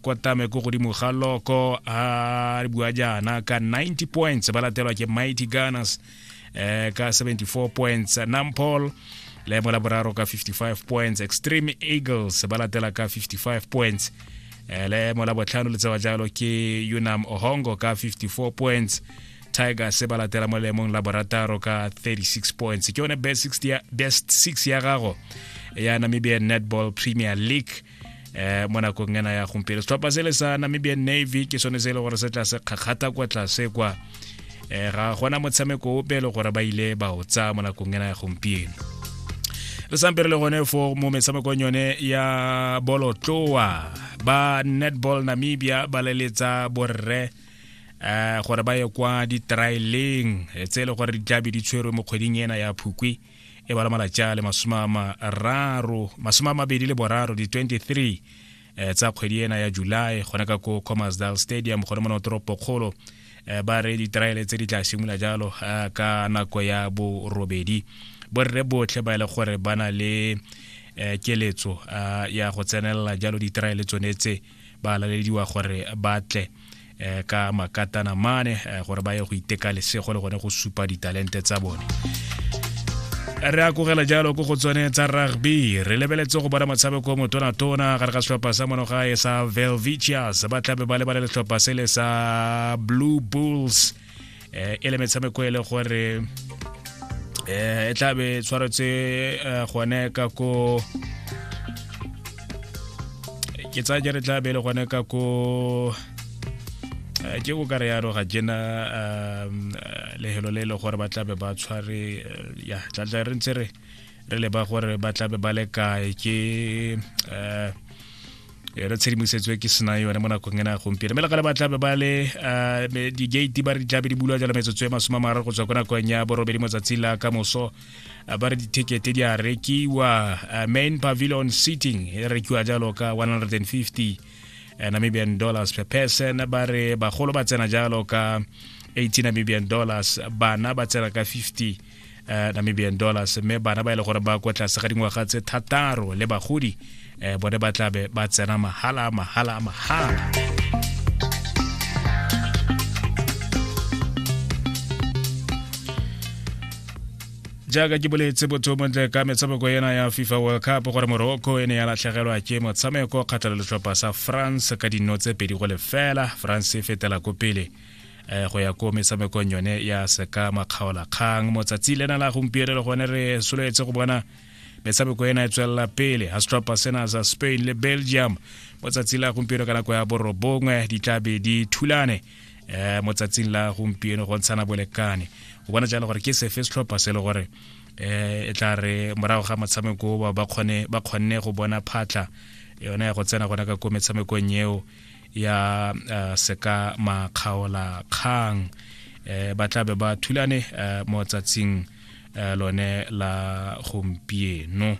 kwatame ko godimo ga loko a re bua jaana ka 90 points ba latelwa ke mighty gunners eh, ka 74 points nampol leemo la boraro ka 55 points extreme eagles ba latela ka 55 points eh, leemo la botlhano le tsewa jalo ke unam ohongo ka 54 points tigers ba latela mo leemong la borataro ka 36 points ke yone best 6 ya, best 6 ya gago ya namibian netball premier league eh mo nakong ena ya gompieno setlhopha se le sa namibian navy ke sone se e le gore se tla se kgakgata kwa tlase kwa um ga gona motshameko ope e le gore ba ile ba o tsaya mo nakong ena ya gompieno re sampe re le gone fo mo metshamekong yone ya bolotloa ba netball namibia ba leletsa borre um gore ba ye kwa di-traileng eh, tse e le gore di tlabe di tshwerwe mo kgweding ena ya phukwi e bala malatša le masome a mararo masome a mabedi le boraro di-23 eh, tsa kgwedi ena ya july gona ka ko commersdal stadium gone mona toropokgolo eh, ba re diteraele tse di tla simolola jalo eh, ka nako ya borobedi borre botlhe ba e le gore ba na le eh, keletso eh, ya go tsenelela jalo diteraele tsone tse ba lalediwa gore ba tle um ka makatana mane um gore ba ye go iteka lesego le gone go supa ditalente tsa bone re a kogela jalo ko go tsone tsa rugby re lebeletse go bona motshameko motonatona gare ga setlhopha sa mono gae sa velvicius ba tlabe ba lebale letlhopha se le sa blue bulls eh, e le metshameko e le gore eh, e tla be tshwaretse eh, gone ka ko ke tsaya ke re tla be e le gone ka ko eh, ke o ka re yaro ga jena um, eh, lehelo le e le gore ba tlabe ba tshware eh, ya tlatla re ntse re re leba gore ba tlabe ba le kae ke um yone tshedimosetso e ke sena yone mo nakong ena ya gompieno mme legale ba tlabe ba le ah, di-gate ba re di tlabe di bulwa jalo metsotso e masome a mararo go tswa ko nakong ya borobedi motsatsi la ka moso ah, ba re dithekete di a rekiwa ah, main pavilion seating e rekiwa jalo ka 150 eh, namibian dollars per person ba re bagolo ba tsena jalo ka 18 namibian dollars bana ba tsena ka 50 uh, namibian dollars mme bana ba e le gore ba kwa tlase ga dingwaga tse thataro le bagodi um bone ba tlabe ba tsena mahala mahala mahala jaaka ke boletse botho montle ka metshameko ena ya fifa world cup gore morocco e ne ya latlhegelwa ke motshameko kgatlha le letlhopha sa france ka dino tse pedi go lefela france e fetela ko pele um go ya ko metshamekong yone ya seka makgaola kgang motsatsi lena la gompieno le gone re soletse go bona metshameko ena e tswelela pele astrapa sena sa spain le belgium motsatsi la gompieno ka nako ya borobongwe di tla be di thulane eh mo tsatsing la gompieno go ntshana bolekane o bona jalo gore ke sefe setlhopha se le gore eh e tla re morago ga motshameko ba kgone ba kgonne go bona phatla yone ya go tsena gona ka ko metshamekong eo ya uh, seka makgaola kgang eh, ba tlabe ba thulane eh, mo tsatsing eh, lone la gompieno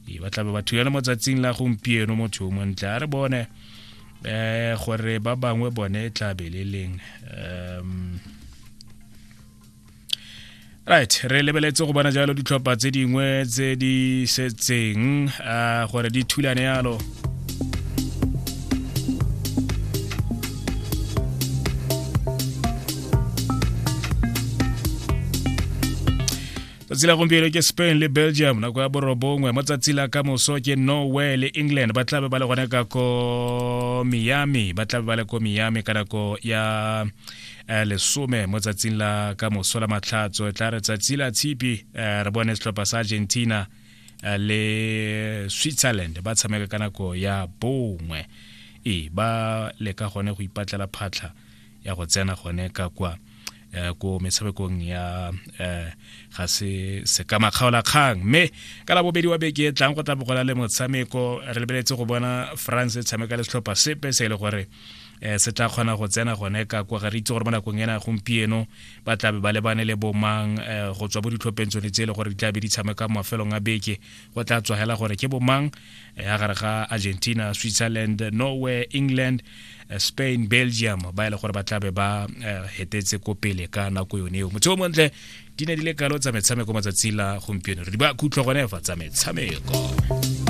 e, ba tlabe ba thulane mo tsatsing la gompieno motho yo montle a re bone eh, gore ba bangwe bone e tlabe le leng um, right re lebeletse go bona jalo ditlhopha tse dingwe tse di setseng uh, gore di thulane yalo tsatsi la gompieno ke spain le belgium nako ya borobongwe mo tsatsi la ka moso ke norway le england ba tlabe ba le gone ka ko miami ba tlabe ba le ko miami ka nako ya eh, lesome mo tsatsing la ka moso la matlhatso e tla re tsatsi la tshipi eh, re bone setlhopha sa argentina eh, le switzerland ba tshameka ka nako ya bongwe e ba leka gone go ipatlela phatlha ya go tsena gone ka kwa Eh, ko metshamekong ya eh, ga se sekama kgaola kgang mme ka la bobedi wa beke e tlang go tla bogola le motshameko re lebeletse go bona france e tshameka le setlhopha sepe se e le gore um se tla kgona go tsena gone ka kwa ga re itse gore mo nakong ena gompieno ba tlabe ba lebane le bomang um go tswa mo ditlhopheng tsone tse e le gore di tlabe di tshameka mafelong a beke go tla tswa hela gore ke bomang ya eh, gare ga argentina switzerland norway england eh, spain belgium ba e le gore ba tlabe ba hetetse ko pele ka nako yone eo motseo montle di ne di le kalo tsa metshameko matsatsi la gompieno re di ba khutlho gone fa tsa metshameko